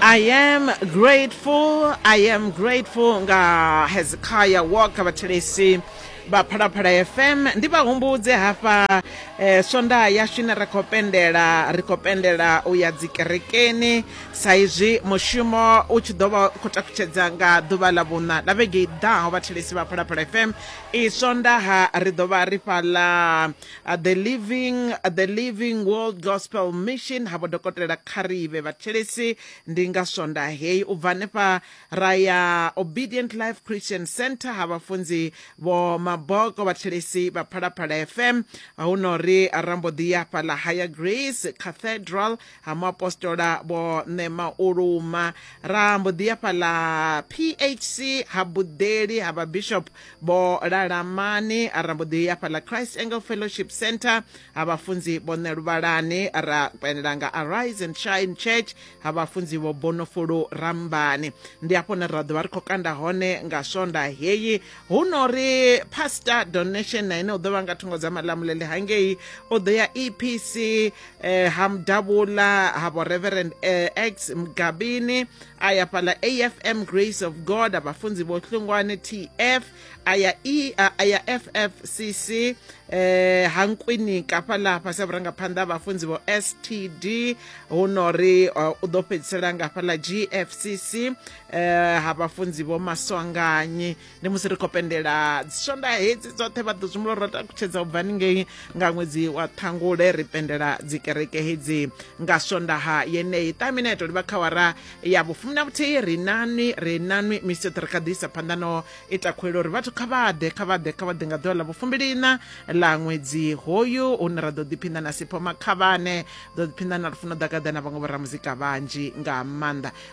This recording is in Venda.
I am grateful, I am grateful nga Hezekiah Walker vhathelesi vha Phalaphala FM ndi vha humbudze hafha eh, swondaha yashu ine ra khou pendela ri khou pendela u ya dzikerekeni sa izwi mushumo u tshi ḓo vha u khou takutshedza nga ḓuvha ḽa vhuṋa ḽa vhege i ḓaho vhathelesi vha Phalaphala FM i swondaha ri ḓo vha ri fhaḽa uh, the living uh, the living world gospel mission ha vhodokotela kharive vhathelesi ndi nga swonda heyi u bva hanefha ra ya obedient life christian center ha vhafunzi vho maboko vhathelesi vha phalaphala fm hu no ri rambo ḓi ya fhaḽa higher grace cathedral ha muapostola vho ṋema u luma ra mbo ḓi ya fhaḽa phc ha buḓeli ha vhabishop vho lalamani ra mbo ḓi ya fhaḽa christ angle fellowship center ha vhafunzi vho ṋe luvhalani ra kwenela nga arise and shine church ha vhafunzi vho bonofulu rambani ndi hafho ne ra ḓo vha ri khou kanda hone nga swonda heyi hu no ri pastor donation na ine u ḓo vha nga thungo dza malamulele hangei u ḓo ya epc eh ha mudavhula ha vho reverend eh, x mgabini a ya fhala afm grace of god abafunzi vho hlungwane tf a ya e a ya ffcc eh ha nkwinika fhala fhasi vhurangaphanḓa vhafunzi vho std hu no ri eh, u ḓo fhedzisela nga fhala gfcc eh ha vhafunzi vho maswanganyi ndi musi ri khou pendela dzisonda hedzi dzoṱhe vha ḓo zwimula ro takutshedza u bva ningei nga ṅwedzi wa ṱhangule ri pendela dzikereke hedzi nga sondaha yeneyi ṱamina ya tou livha kha wara ya vhufumi na vhuthihi ri nanwi ri nanwi misithe ri kha ḓi isa phanḓa no ita khuwelo uri vhathu kha vha ḓe kha vha ḓe kha vha ḓe nga ḓuvha ḽa vhufumbiliina ḽa ṅwedzi hoyu hune ra ḓo ḓiphinda na sipho makhavhane ḓo ḓiphinda na lufuno ḓagaḓa na vhaṅwe vhoramuzika vhanzhi nga maanḓa